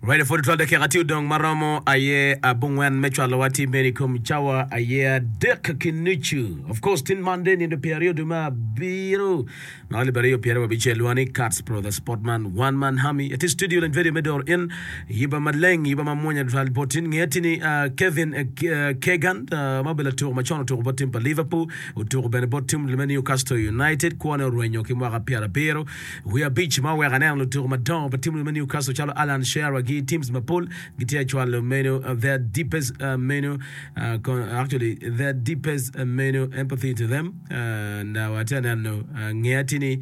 Radio 42 dakika tye odong ma romo aye abongwen me cwalowa tye meri kom cawa aye adek ki nucu. Of course tin man de nindo pyeri odu ma abiro. Na libere yo pyeri wabicel wani Cats Pro the Sportman One Man Hami. Eti studio len video me dor in yiba maleng yiba ma mwonya dwal botin nge tini ah, Kevin eh, Ke- ah, Kegan ah, ma bela tuko ma con otuko bot tim pa Liverpool otuko bene bot tim me Newcastle United kwone orwenyo ki mwaka pyerabiro Wiye abic ma oweko aneno lutuku madongo pa timwu me Newcastle calo Alan Shearer gi teams mapol gitye ka cwalo meno their deepest meno actually their deepest meno empathy to them and uh, atye aneno nge atye ni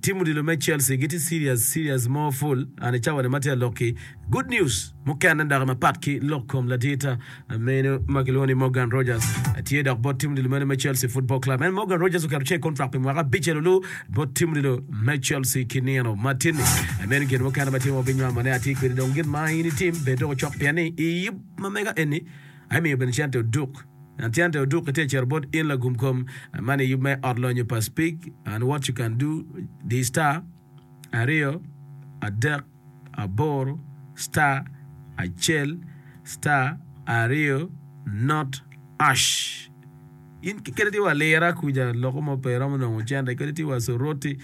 team odilo me Chelsea gitye serious serious more full ane cawani ma tye alokki good news mukene dok mapat ki lok kom ladirta Meno ma kilwongo ni Morgan Rogers tye dok bot tim odilo meno me Chelsea Football Club. En Morgan Rogers oketo cek kontrak pi mwaka abic elo luu bot tim odilo me Chelsea ki nino ma tin-ni. Meno gin mukene ma tye ma wabinyamo ne atir kwedi dong gin ma in itim bed doko cok pien ni i yub ma mega eni aye miyo bene cente oduk. An cente oduk itye cito bot in lagum kom man i yub me ot lonyo pa Speak and What You Can Do, The Star, aryo, adek. aboro star acel star aryo not ash in kiketi tye wa lira kuca loko mo pe romo nongo cente kadi tye wa soroti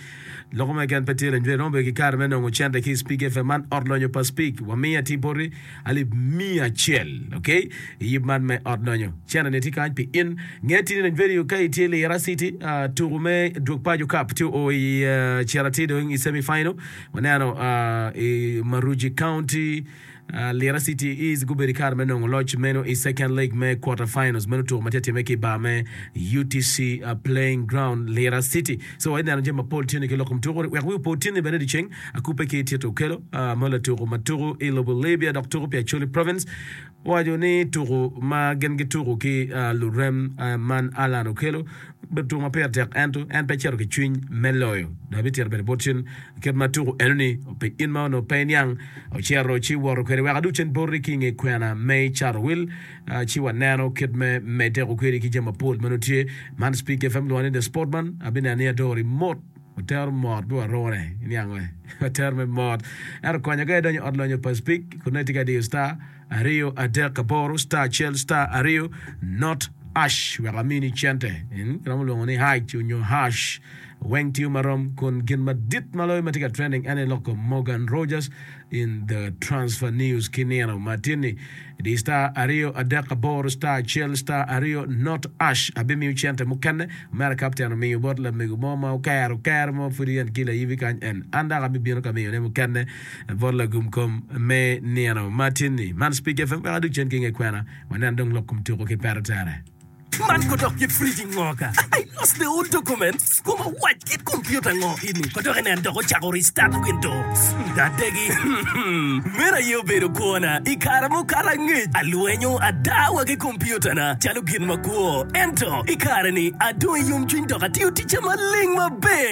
loko mo keken pe tye renjre romo bedo ki kare me nongo cente ki speak fm man ot lonyo pa speak wamiyo ating poti alip miya acel ok iyib man me ot lonyo cente ni tye kany pi in nge tini range radio ka itye lira city ah, tuku me dwog paco cup tye o i ah, cera tye dong i semi final Waneno i Maruji County, Lira City is gubedo i kare me nongo loc meno i Second Leg me Quarter Finals. Meno tuko ma tye timme ki i bar me UTC Playing Ground, Lira City. So wa ineno jami mapol tyeni ki lokom tuko. Wek wiu po tyeni bene dyeceng, akubbe ki Tito Okello ma latuko ma tuko i lobo Libya dok tuko pi Acholi Province. Owaco ni tuku ma gin gituku ki lurem man Allan Okello obedo tuku ma pire tek ento en pe cito ki cwiny me loyo dok bitito bene bot cen kit ma tuku enoni ope in ma onongo pe iniang ocito ci woto kwede wek adug cen boti ki inge kwena me cato wil ci waneno kit me medde kwedi ki jami mapol ma nongo tye man Speak FM lwongo ni The Sportman abineno ni adori mot. Watero mot me warune niango e. Watero me mot. Ento konyo ka idonyo ot lonyo paspik kun nongo itye ka diyo star aryo adek aboro star acel star aryo not ash wek amini cente. Eng iromo lwongo ni hash onyo hash. Weng tiyo marom kun gin madit maloyo matye ka trending ene loko Morgan Rogers In The Transfer News ki nino ma tye-ni, Di star aryo adek aboro star acel star aryo not ash abimiyo cente mukene mere ka apteno miyo bot lamego mo ma okero kero mo pud yen ki layibi kany en an dok abibino ka miyone mukene bot lagum kom me nino ma tye-ni. Man Speak FM wek adog cen ki nge kwena wanen dong lok kom tuko ki peto tere. Man ko dok kit friji ngo ka I lost the old documents koma wac kit computer ngo ini ko dok inen dok ocako restart windows adegi meno aye obedo kwona I kare mukato angec alwenyo ada wa ki computer na calo gin makwo ento I kare ni adong I yomcwiny dok atiyo ticca maleng maber.